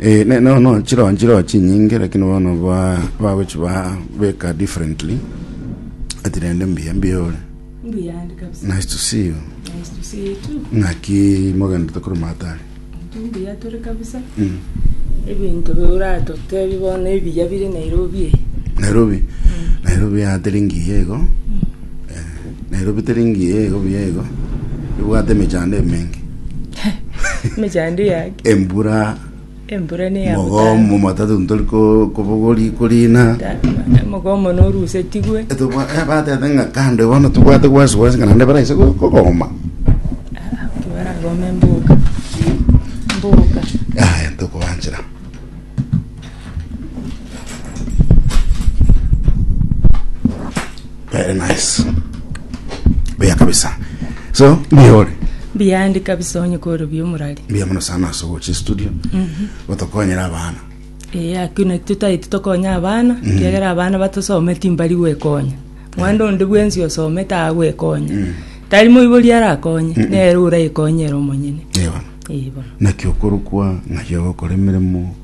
Eh, ne- no no chiroho chiroho chinyinge lakini bono ba bagochi ba beka differently ati rende mbuya mbuya ore mbuyandi kabisa nice to see you nice to see you too ng'aki mogenda tokoro matari tumbuya tore kabisa mm. ebinto biuratotebi bono ebiya bire nairobi eye nairobi nairobi ateri ngiya igo Na erobite ringiya igo buya igo, ribwate emechando emenge, Emechando ya haki. embura, Embura ne ya mogomo, matatu ntori ko- kobogori korina. Mogomo norusetigwe. Eh, tobwa- eh, batete ng'a kando iga bono tobwate gwansi gwansi ng'a naende baraise go- kogoma. Baragome mboka. Mboka. Yaya, tokoanchera. Very nice. Buya kabisa. So, mihore. biyandi kabisa onye kore biomorari Buya muno sana ase ogochi studio. Gotokonyera abana. ee akina tutaiti tokonya abana kiagera abana batosometi mbari gwekonya mwanda onde bwensi osomete agwekonya tari moibori arakonye nere orayekonyera omonyene Ewa. Igo. Naki okorokwa ng'ai ogokora emeremo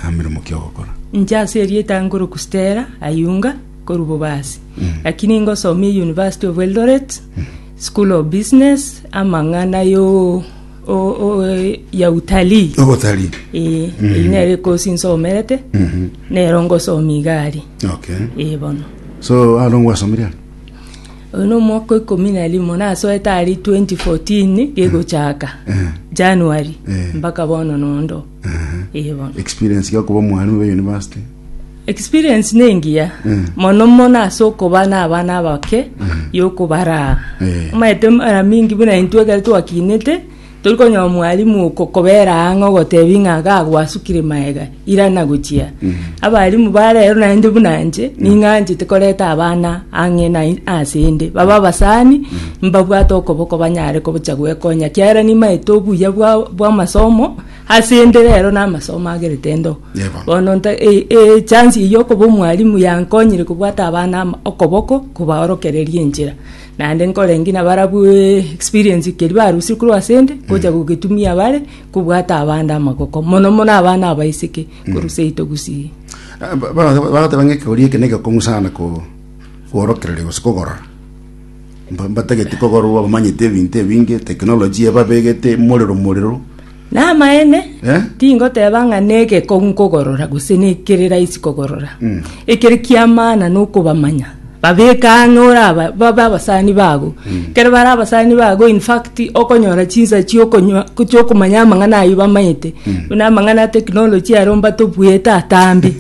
nameremo ki ogokora? Inche ase erieta nkoroku Stella Ayunga korwa Bobasi. Lakini ngosomia University of Eldoret, School of Business, amang'ana yo o- o- ya utalii. Obotalii. Eh, eyio nere ekosi nsomerete, nero ngosomia iga aria. Okay. Eh, bono. So aro ngwasomirie aro? Oyo no omwaka o ikomi na rimo nasoete aria 2014 gegochaka January Eh. mpaka bono nondo. Eye bono. experience ya okuba omwarimu be university Experience nengiya Mm. mono mono ase okoba na abana abake yokobaraa. Eh. Omanyete mara mingi buna intwe ekero twakinete Tori konyora omwalimu okokobera ang'e ogotebia ng'a iga agwasukire maega, irana gochia. Abalimu ba rero naende buna inche, ning'anchete koreta abana ang'e na asende, babe abasani, mbabwate okoboko banyare gocha gwekonya, ekiagera nimaete obuya bwa bw'amasomo asende rero na amasomo agerete ndo. Yebo. Bono nta e- e- echance eyio okoba omwalimu yankonyire kobwata abana ama okoboko, kobaorokereria enchera. Naende nkorengie nabarabwo experience keria barusirie korwa ase 'nde, gocha gogetumia bare, kobwata abande amagoko, mono mono abana abaiseke, korwa seito gusii. Ah, ba- ba- bagateba ng'a ekegoria eke neke kong'u sana ko- koorokereria gose kogorora Mba- mbatageti kogorwa abamanyeti ebinto ebinge technology ebabegete morero morero Namaene, tingoteba ng'a negekong'u nkogorora gose nekere raisi kogorora. Ekere ki'amana nokobamanya, babeke ang'e ore aba, babe abasani bago. Ekero bare abasani bago in fact okonyora chinsa chi'okonywa chi'okomanya amang'ana ayio bamaete, buna amang'ana a technology aro mbatobuyete atambe,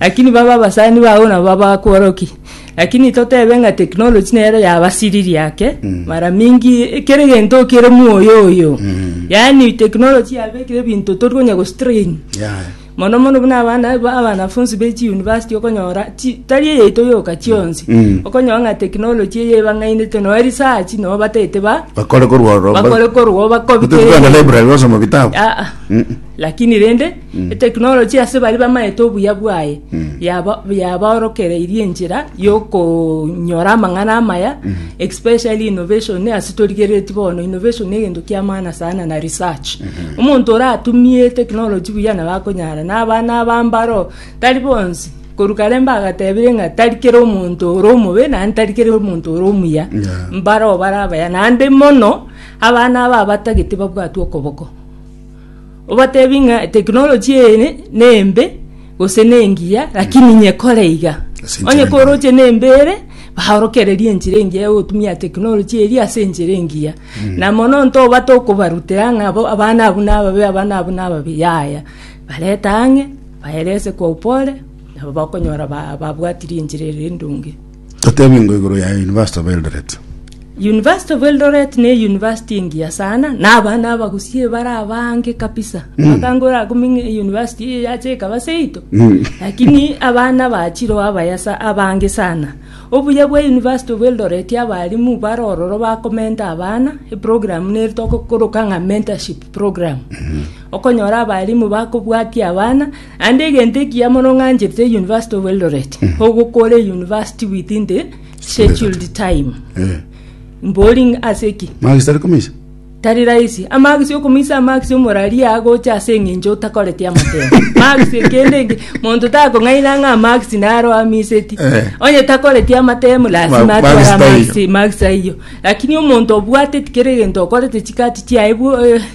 lakini babe abasani bago nabo babakworokia. Lakini totebe ng'a technology nero yabasiririe ake mara mingi eh, kere gento kere mwoyo oyo yaani technology yabekire ebinto tori konya gostrain Yeah. mono mono buna abana aba- abanafunzi be chiuniversity okonyora chi- tari eyaito yoka chionsi Mm. okonyora ng'a technology eye ebang'ainete noe research noe batete ba bakore korwa bakore korwa bakobike Kutokana na library wasoma vitabu Ah, ah. Mm. lakini rende Eteknoloji ase baria bamaete obuya bwaye yaba- yabaorokereirie enchera yokonyora amang'ana amaya especially innovation ase torigereti bono innovation ne egento kia maana sana na research omonto oratumie eteknoloji buya nabo akonyara na abana aba mbaro tari bonsi korwa kare mbagatebire ng'a tari kera omonto ore omobe naende tari kera omonto ore omuya Yeah. mbaro bare abaya naende mono abana aba abatagete babwatwe okoboko Obatebi ng'a technology eye nembe gose nengiya lakini inye kore iga. Ase enchera Onye engiya. koroche nembe ere baorokererie enchera engiya ya gotumia technology eria ase enchera engiya. Na mono ntobate okobarutera ng'a bo abana abwo nababe abana abwo nababe yaya. Barete ang'e baerese kwa upole nabo bakonyora ba- babwatirie enchera ere endonge. Totebingwe igoro ya University of Eldoret. University of Eldoret ne university engiya sana na abana abagusie bare abange kabisa bakangora kuming university eye yache ekaba seito lakini abana bachiro abayasa abange sana obuya bwa University of Eldoret abarimu bare ororo bakomenta abana eprogram neri tokokoroka ng'a mentorship program okonyora abarimu bakobwatia abana Naende egento ekiya mono ng'ancherete University of Eldoret ogokora university within the scheduled time Eh. mbori ng'a ase ki Magisi tari komeisa. tari rahisi amagisi okomoisa amagisi omorari agocha ase eng'encho otakoreti amatemo magisi ekende enge monto takong'aina ng'a amagisi naro amiseti Eh. onye takoreti amatemo lasima Ma- atware magisi taiyo. amagisi magisi ayio lakini omonto obwateti kere egento okorete chikati chiaye bwo eh,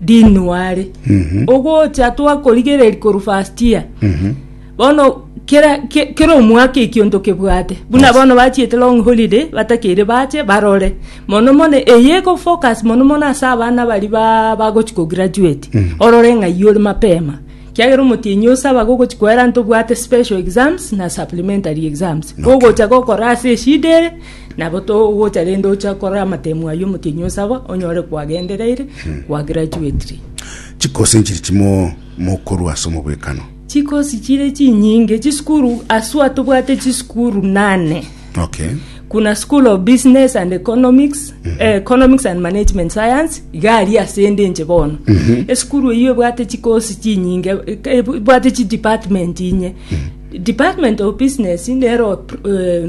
Dinwari ogocha twakorigereria koru first year bono kera ke- kera omwaka ekionto kebwate buna bono bachiete long holiday batakeire bache barore mono mono eye eko focus mono mono ase abana bari ba bagochi ko graduate orore ng'ai ore mapema kiagera omotienyi osaba gogochi koera ntobwate special exams na supplementary exams gogocha gokora ase eshida ere Nabo togocha rende ocha korora amatemu ayio omotienyi o saba onyore kwagendereire, kwa graduately. Chikosi nchiri chimo mokorua ase omobwekano. Chikosi chire chinyinge, chisukuru aswa tobwate chisukuru nane. Okay. Kuna School of Business and Economics, eh, Economics and Management Science, iga ari asende inche bono. Esukuru eyio ebwate chikosi chinyinge, eke- ebwate chi department inye. Department of Business nero eh,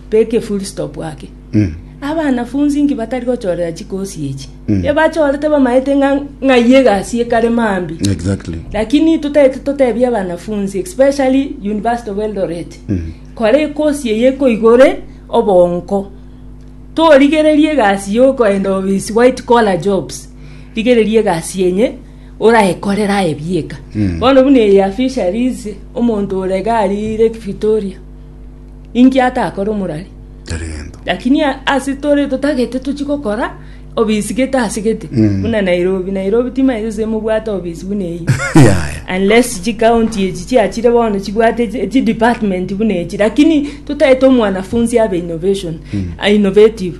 Teka efull stop ake. Abanafunsi inki batari gochorera chikosi echi? Ebachorete bamaete ng'a ng'ai egasi ekare mambia. Exactly. Lakini totete totebia abanafunsi especially University of Eldoret. Kora ekosi eye ekoigore obonko. Torigererie egasi yokoenda ofisi white collar jobs. Rigereria egasi yenye oraekorera aye bieka. Bono buna eye ya fisheries omonto ore iga arire Victoria. Inki atakore omorari? Lakini ase tore totagete tochie gokora obisi gete ase gete mm. buna nairobi nairobi timaete se mobwate obisi buna eyi unless chikaunti echi chiachire bono chibwate chidepartment buna echi lakini totaete omwanafunzi abe innovation mm. innovative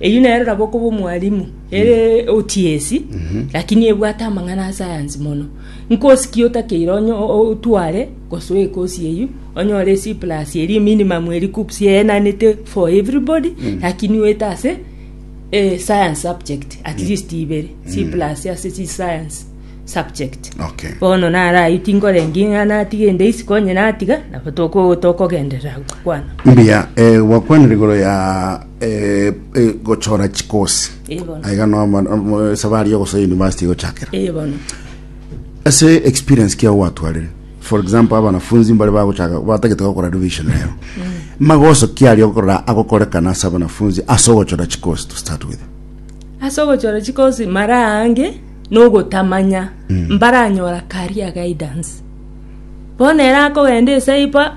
Eyio nere nabo okoba omwalimu ere otiesi lakini ebwate amang'ana a sayansi mono nkosi ki otakeire onye o- o- otware gose oye kosi eyio onyore c plus eri eminimum eri KUPS eyenanete for everybody lakini oete ase eh, science subject at least ibere c plus ase chi science subject Okay. bono nare ayio tinkorengia ng'a natiga ende isiko onye natiga nabo toko- tokogenderera gokwana Mbuya, eh, gwakwanire igoro ya eh, eh, gochora chikosi Eh, bono. aiga no ma- mo- esabari yogosoa university gochakera Eh, bono. ase experience kia gwatwarire for example abanafunzi mbare bagochaka batagete gokora revision leo magoso kiari okorora agokorekana ase abanafunzi ase ogochora chikosi to start with ase ogochora chikosi mara ange nogotamanya mbaranyora career guidance bono ere akogenda esaiba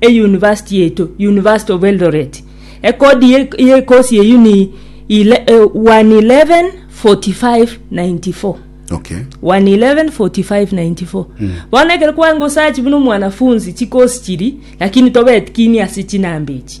Eyunivasiti yaito, University of Eldoret, ekodi y'ekosi eyio ni 1114594. Okay. 1114594 mm. bono ekero kwanga osachi buna omwanafunzi chikosi chiri lakini tobetikinie ase chinambechi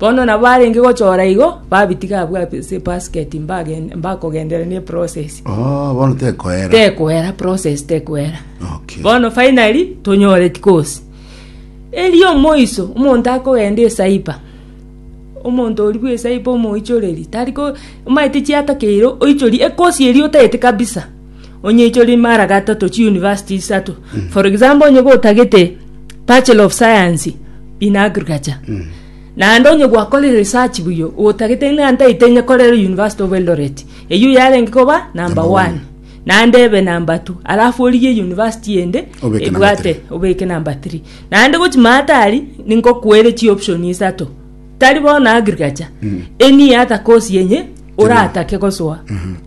Bono nabo arenge gochora igo, babitiga abwo ase ebasket mbagen- mbakogenderera ne eprosesi. Oh, bono tekoera. Tekoera, process tekoera. Okay. Bono finally, tonyore tikosi. Erio omoiso, omonto akogenda esaiba, omonto oria bwa esaiba omoichoreri, tariko, omaete chiatakeire oichori ekosi eria otaete kabisa. Onye ichori mara gatato chi university isato. Mm. For example onye gotagete Bachelor of Science in Agriculture. Mm. Naende onye gwakorire research buyo otagete ng'a ntaite inye korera University of Eldoret. Eyio yarenge koba number 1. Naende ebe number 2. Alafu oriye university ende ebwate obeke number 3. Naende gochi matari ningo kwere chi option isato. Tari bona agriculture. Mm. Eni ata course yenye oratake gosoa. Mm -hmm.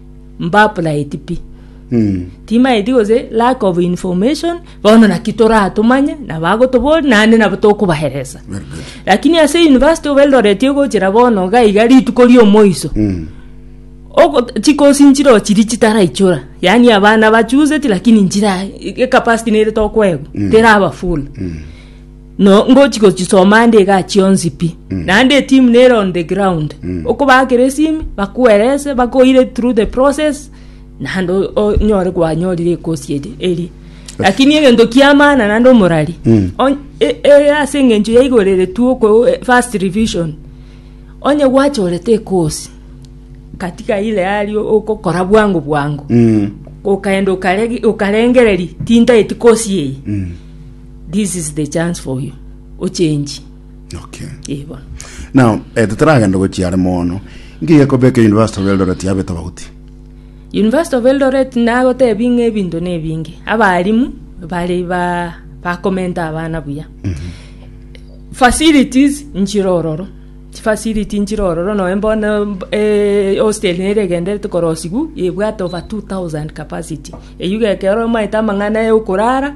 mbapuraeti pi timaeti gose lack of information bono naki toratomanye nabo agotoboria naende nabo tokobaeresa Very good. lakini ase university of eldoret egochera bono iga iga rituko riomoiso Ogo- chikosi nchire ochiri chitaraichora yaani abana bachuseti lakini nchira ecapacity nere tokoegwa teraba full No ngochi gochisoma ande iga achia onsi pi. Naende etimu nere on the ground. Okobaakera esimi, bakoerese, bakoire through the process, naende o- o- onyore kwanyorire ekosi eri- eria. Lakini egento kiamana naende omorari. On- e- e- ase eng'encho yaigoreretwe oko e- first revision. Onye gwachorete ekosi, katika ile hali ogokora bwango bwango, Mm. okaenda okare- okarengereria tintaeti kosi eye. This is the chance for you. Ochenji. Okay. Eh, bono. Now, eh, totaragenda gochia are mono. Nki gekobeka University of Eldoret yabe tofauti? University of Eldoret nagotebi ng'a ebinto na ebinge abarimu bari ba bakomenta abana buya facilities nchire ororo chifacility nchire ororo noe mbono eh, hostel nere egenderete korosiwu ebwate over 2000 capacity eywo gekero omaete amang'ana yokorara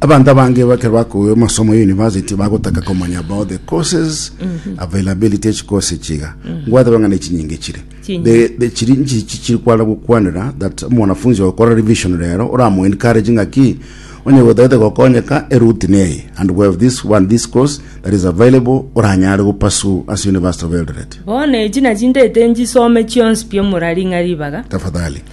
Abanto abange bakero bakogigwa amasomo ya university bagotaka komanya about the courses availability ya chikosi chiga ngwate bang'a ne chinyinge chire Chinyinge. The- the chiri nchi chichiri kwana gokwanera that omwanafunzi ogokora revision rero oramu encourage ng'aki onye gotagete gokonyeka eruti neye and we have this one this course that is available oranyare gopasu as university of eldoret Bono echi nachindete njisome chionsi piomorari ng'a ribaga. tafadhali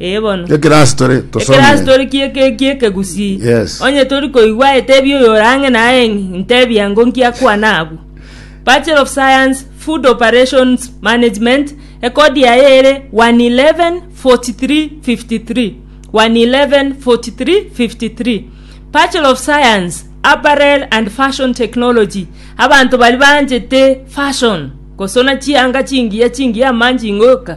Ee bono. Ekirasi tore Ekerasi tosomire. tori kie- kie- kie kegusii. Yes. Onye tori koigwa etebi oyo orang'e naye ng'i ntebi ango nkiakwana abwo. Bachelor of Science, Food Operations Management, ekodi yaye ere 111 43 53. 111 43 53. Bachelor of Science, Apparel and Fashion Technology, abanto bari banchete fashion, gosona chianga chingiya chingiya amanjingoka,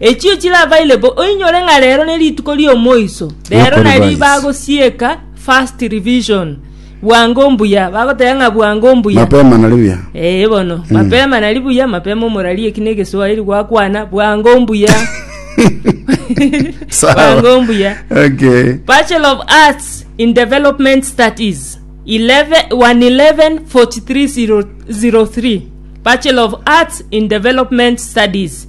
Echio chirabaire bo, oinyore ng'a rero ne rituko ri'omoiso, rero Ri'okoribaa nari Yesu. bagosieka first revision, bwango mbuya, bagoteba ng'a bwango mbuya. Mapema nari buya. Ee bono, mapema nari buya, mapema omorari eki negeswahiri gwakwana, bwango mbuya. Sawa. Bwango mbuya. Okay. Bachelor of Arts in Development Studies 11 111 4303 Bachelor of Arts in Development Studies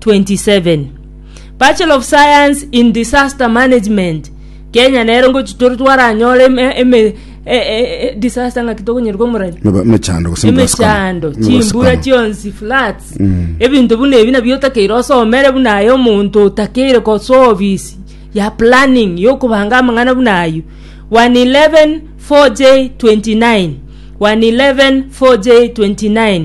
27 Bachelor of Science in Disaster Management Kenya nero ngochi tore twaranyore eme- eme- e- e- e- disaster ng'aki tokonyora komorani Meba- emechando gose emechando emechando, chimbura emechando. chionsi floods ebinto buna ebi nabio otakeire osomere buna aye omonto otakeire kosoa obisi ya planning yokobanga amang'ana buna ayio 111 4j 29 111 4j 29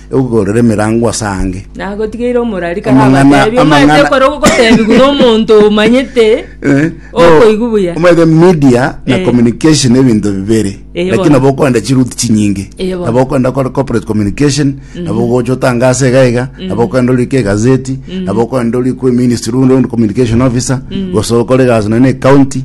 egogorera emerango ase ange. Nagotigeire omorari kare Amang'ana- abatebi, omanyete amang'ana- ekero ogotebigwa nomonto omanyete Eh, okoigwa buya. omanyete media na Eh. communication ebinto bibere Eh, lakini bono. nabo okoenda chiruti chinyinge Eh, bono. nabo okoenda kore corporate communication nabo ogocha otanga ase iga iga nabo okoenda orike egazeti nabo okoenda ori kwe ministry runde ondi communication officer gose okore egasi nonye na ecounty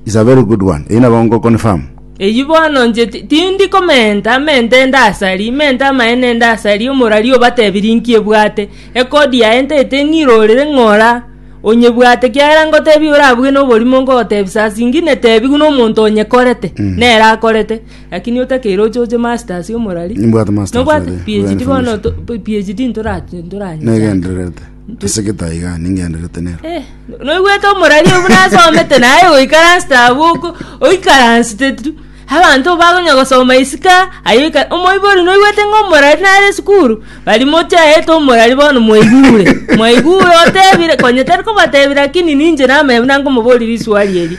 is a very good one eyi nabo ngokonfirm Eyio bono inche tindi komenta mente ndasari, mente amaene ndasari, omorari obatebirie inki ebwate, ekodi yaye ntaete ng'irorere ng'ora onyebwate, kiagera ngotebia orabuge noborimo ngogotebisa ase inki netebi buna omonto onyekorete, mm. nere akorete, lakini otakeire oche oche masters omorari. Nibwate masters. Nobwate PhD bono PhD ntoranyesaka. Negendererete. Ase getaiga ningenderete nero. Eh, noigwete omorari obu nasomete naye goikaransete abwo oko oikaransete tu abanto bagonya gosoma isika aye oika omoibori noigwete ng'a omorari nare esukuru bari mochaete omorari bono mwaigure mwaigure otebire konya tari kobatebire lakini ninche namanya buna nkomobori risuari eri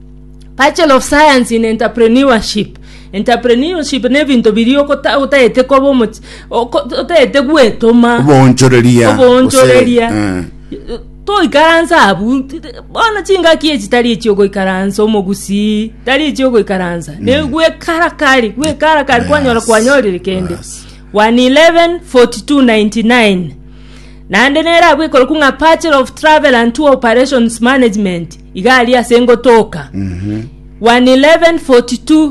Bachelor of Science in Entrepreneurship. Entrepreneurship nebinto biria okota- otagete koba omochi- oko- otagete gwetoma Oboonchoreria. oboonchoreria gose, eh, toikaranse abu t- t- bono chingaki echi tari echiogoikaransa omogusii tari echiogoikaransa ne gwekarakari gwekarakari kwanyora Yes, kwanyorire kende yes. 111 42 99 Naende nere agwo ekorokwa ng'a Bachelor of Travel and Tour Operations Management, iga aria ase ngotoka. 1:11:42.